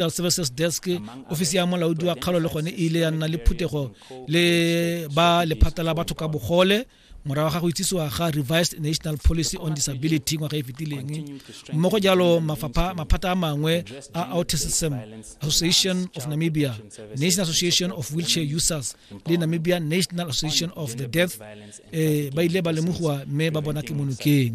Health Services Desk ofisi ya molaodi wa kgalo le gone e ile ya nna le phuthego le ba lephata la batho ka bogole morago ga go itsisiwa ga revised national policy on disability ngwaga e fetileng mmogo jalo maphata a mangwe a autism association of namibia national association of wheelchair users le namibia national association of the deaf um ba ile ba lemogiwa mme ba bona ke monokeng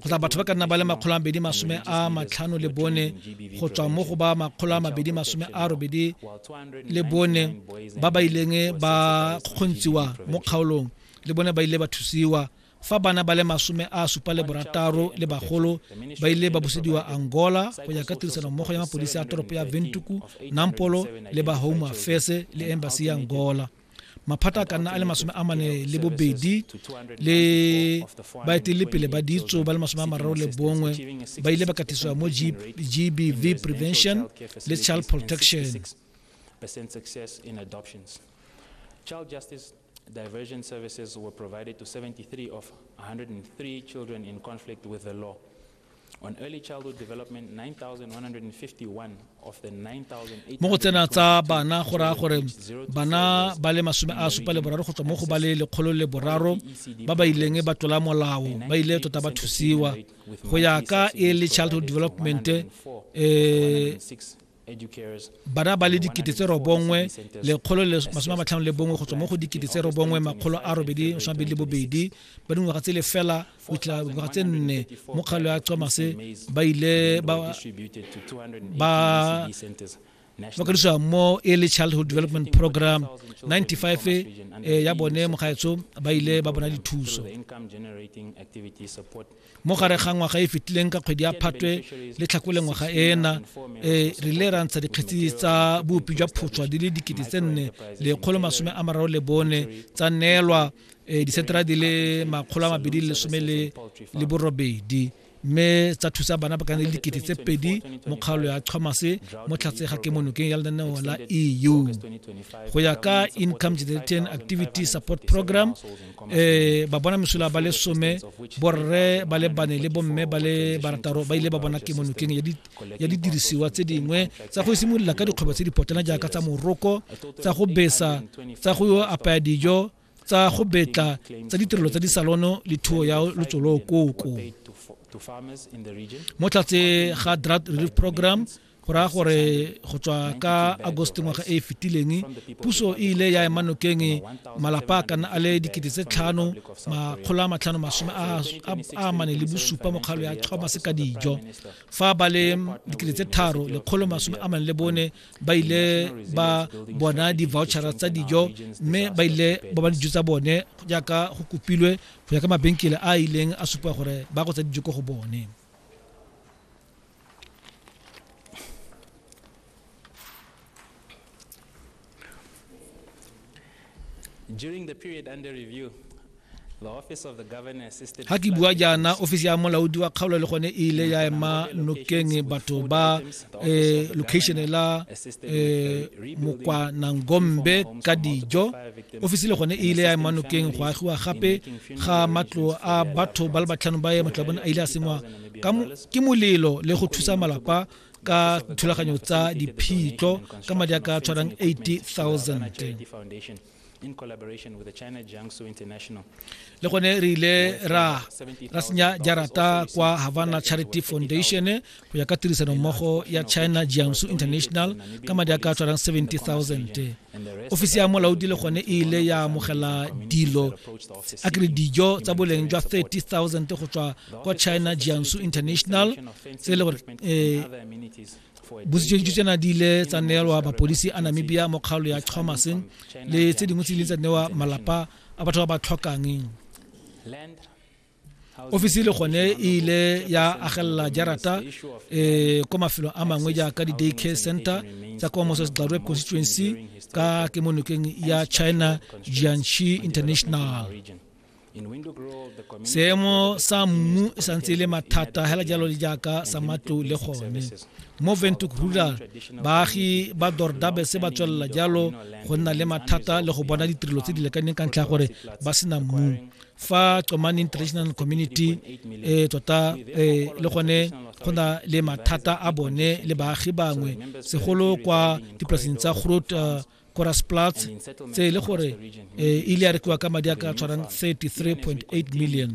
kgotsa batho ba ka nna ba le makgolo a mabedi masome a matlhano le bone go tswa mo go ba makgolo a mabedi masome a robedi le bone ba ba ileng ba kgontshiwa mo kgaolong le bone ba ile ba thusiwa fa bana ba le masome a supa le borataro le bagolo ba ile ba busediwa angola go ya ka tirisano mmogo ya mapodisi a toropo ya ventuku nampolo le ba home affairs le embassy ya angola maphata a ka nna a le masome a mane le bobedi le baeteledipele ba ditso ba le masome a mararo le bongwe ba ile ba katisiwa mo gbv prevention le child protection Child justice diversion services were provided to 73 of 103 children in conflict with the law. mo go tsena tsa bana go raya gore bana ba le masome a supa le boraro go tswa mo go ba le lekgolo le boraro ba ba ileng ba tlola molao ba ile tota ba thusiwa go ya ka early childhood development um bana ba le dikete tse robongwe lekgolo le masome a matlhano le bongwe go tswa mo go dikete tse robongwe makgolo a robedi masome a bedi le bobedi ba dingwaga tse lefela go fitlhela dingwaga tse nne mo kgalo ya comase ba ile ba ba kadisiwa mo early childhood development program 95 e eh, ya bone mogaetsho ba ile ba bona dithuso mo gare ga ngwaga e fetileng ka kgwedi ya phatwe le tlhakole ngwaga ena e re ile ra ntsha dikgetsi tsa bopi jwa photshwa di le dikete tse nne lekgolo masome a mararo le bone tsa neelwa e, disetera di le makgolo a mabedi le lesome le borobedi mme tsa thusa bana ba kana le dikete tse pedi mo kgaolo ya tlhomase mo tlhatse ga ke monokeng ya lenaneo la eu go ya ka income generating activity support program eh ba bona mesola ba le some borre ba le bane le bomme ba le barataro ba ile ba bona kemonokeng ya didirisiwa tse dingwe tsa go simolola ka dikgwebo tse dipotana jaaka tsa moroko tsa go besa tsa go apaya dijo tsa go betla tsa ditirelo tsa disalono le thuo ya lotsolo koko mo tlatse ga drought relief program go raya gore go tswa ka agosto ngwaga e e fetileng puso e ile ya ema nokeng malapa a kana a le dikete tse tlhano makgolo a matlhano masome a amane le bosupa mokgalo ya thomas ka dijo fa ba le dikete tse tharo lekgolo masome a mane le bone ba ile ba bona di-vouchera tsa dijo mme ba ile ba ba dijo tsa bone jaaka go kopilwe go ya ka mabenkele a ileng a supa gore ba go tsa dijo ko go bone During the period under review, ga ke bua jaana ofisi ya molaodi wa kgaolo le gone e ile ya ema nokeng batho ba eh, location la eh, mokwanangombe ka dijo ofisi le gone e ile ya ema nokeng go agiwa gape ga matlo a batho ba le batlhano ba ye matlo a bone a ile a sengwa ke molelo le go thusa malapa ka dithulaganyo tsa diphitlho ka madi a ka tshwarang 80000 in collaboration with the China Jiangsu International. Le gone re ile ra ra senya jarata kwa Havana Charity Foundation go ya ka tirisano mmogo ya China Jiangsu International ka madi a ka tshwarang 70000. Ofisi ya molaodi le gone e ile ya amogela dilo a kere dijo tsa boleng jwa 30000 go tswa kwa china jiangsu international tse e le gore um bositsoditso tsena di ile tsa neelwa mapodisi a namibia mo kgaolo ya chomaseng le tse dingwe tse di ile tsa newa malapa a batho ba ba tlhokang ofisi le gone e ile ya agelela jarata um ko mafelong a mangwe jaaka di-day care center tsa kwa moses glarwe constituency ka kemonokeng ya china jianshi international seemo sa mmu e santse e le mathata hela jalo le jaaka sa matlo le gone mo ventuk rural baagi ba dordabe se ba tswelela jalo go nna le mathata le go bona ditirelo tse di lekaneng ka ntlha ya gore ba sena mmu fa comane international community e tota e, le gone go na le mathata a bone le baagi bangwe segolo kwa dipolaseng tsa grot uh, korasplats tse e le gore e ile ya rekiwa ka madi a ka tshwarang 33.8 million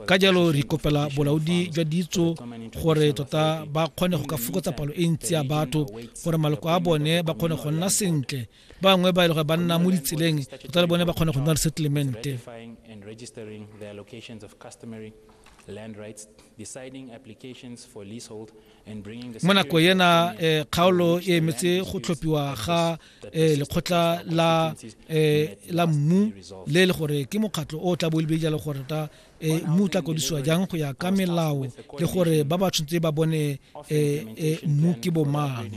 ka jalo re kopela bolaodi jwa ditso gore tota ba kgone go ka fokotsa palo e ntsi ya batho gore maloko a bone ba kgone go nna sentle ba bangwe ba e le gore ba nna mo ditseleng tota le bone ba kgone go nna resettlemente land rights, deciding applications for leasehold, mo nako ena eh, kgaolo e emetse go tlhophiwa ga eh, lekgotla la eh, la mmu le le gore ke mokgatlho o tla bo le jalo gore ta eh, mmu o tla kodisiwa jang go ya ka melao le gore ba ba tshwanetse ba bone eh, eh, mmu ke bomang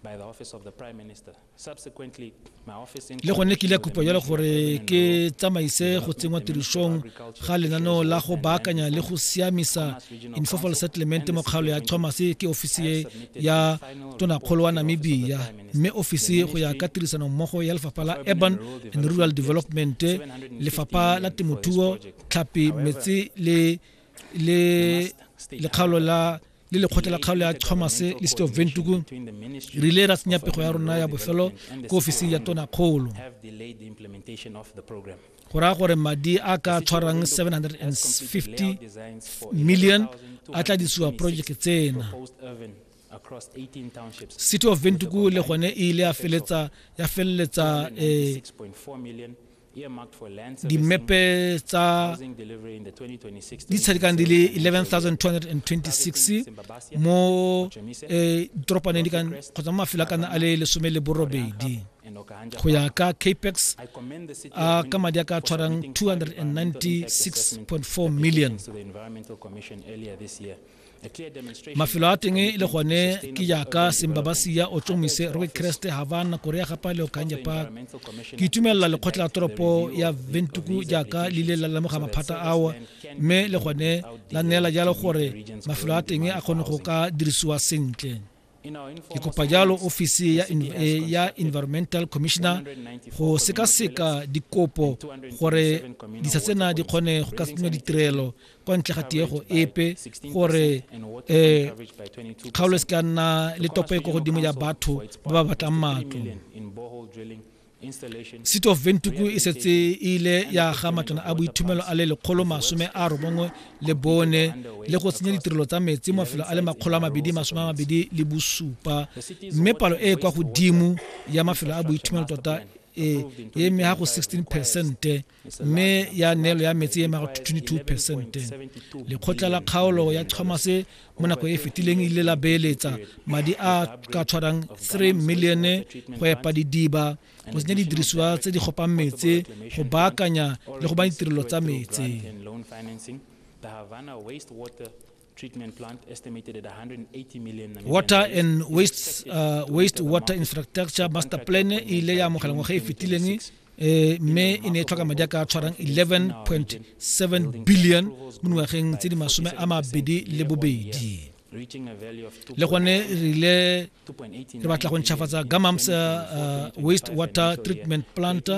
by the office of the prime minister le gone ke ile kopo jalo gore ke tsamaise go tsenngwa tirišong ga lenaneo la go baakanya le go siamisa informal settlement mo kgaolo ya thomas ke ofisi e ya tonakgolo wa namibia mme ofisi go ya ka tirisano mmogo ya lefapha la urban and rural development lefapha la temothuo tlhapi metsi le le lekgaolo la le lekgotla la kgaolo ya chomase le city of ventuku re ile ra tsenya pego ya rona ya bofelo ko ofising ya tona kgolo go raya gore madi a ka tshwarang 750 million a tla disiwa projeke tsena city of ventuku le gone e ile ya feleletsa ya feleletsa eh, dimepe tsa di tshadikang di le 11226 mo eh, ditoropane di kan kgotsa mo mafelo a kana a le lesome le borobedi go ya ka capex a ka madi a ka tshwarang 296.4 million mafelo a teng le gone ke jaaka sembabasia o tsomise roke kreste havana korea gapa le okanje park ke itumelela lekgotla la toropo ya ventuku jaaka le ile la lemoga maphata ao mme le gone la neela jalo gore mafelo a teng a kgone go ka dirisiwa sentle ke kopa jalo ofisi ya, eh, ya environmental commissioner go sekaseka dikopo gore disa tsena di kgone go ka tsenya ditirelo kwa ntle ga tiego epe gore um kgaolo e se ka nna le topo e ko godimo ya batho ba ba batlang matlo city of ventuku e setse e ile ya ga matlwana a boithumelo a le lekgolo masome a robongwe le bone le go tsenya ditirelo tsa metsi mafelo a le makgolo a mabedi masome a mabedi le bosupa mme palo e e kwa godimo ya mafelo a boithumelo tota e e mme ga go 16 percente mme ya neelo ya metsi e maga 22 percent lekgotla la kgaolo ya thomas mo nako e fetileng ile la beeletsa madi a ka tshwarang 3 milione go epa didiba go tsenya didirisiwa tse di gopang metsi go baakanya le go ba ditirelo tsa metsi treatment plant estimated at 180 million water and waste uh, waste water infrastructure master plan e ile ya amogela ngwaga e fetileng eh, mme e ne e tlhoka madi a ka tshwarang 11.7 billion mo dingwageng tse di masome a mabedi le bobedi le gone re ile re batla go ntšhafatsa gamams uh, uh, waste water treatment plant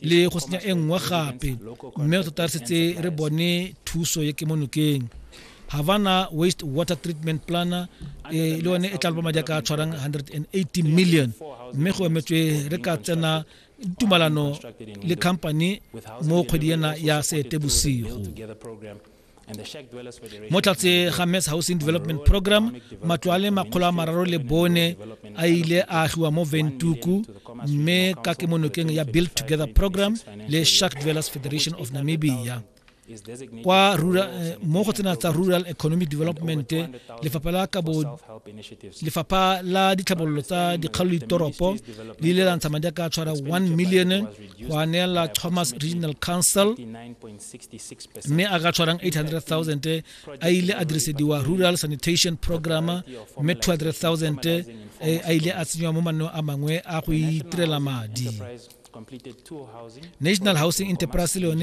le go senya e nngwe gape mme tota re setse re bone thuso ye ke mo nokeng havana waste water treatment plan e le yone e tla loba madi a ka tshwarang 180 million mme go emetswe re ka tsena tumalano le company mo kgwedi ena ya seetebosigo mo tlatse ga mass housing development program matlo a le makgolo a mararo le bone a ile a agiwa mo ventuku mme ka kemonokeng ya build together program le shark dwellers federation of namibia kwa rural, eh, mo go tsena tsa rural economic development lefapha la kabo lefapha la ditlhabololo tsa dikgalo ditoropo le ile la ntsha madi a ka tshwara 1 million go aneela thomas regional council mme a ka tshwarang 800000 a ile a dirisediwa rural sanitation program mme 200000 eh, a ile a tsenywa mo manno a mangwe a go itirela madi national housing enterprise le yone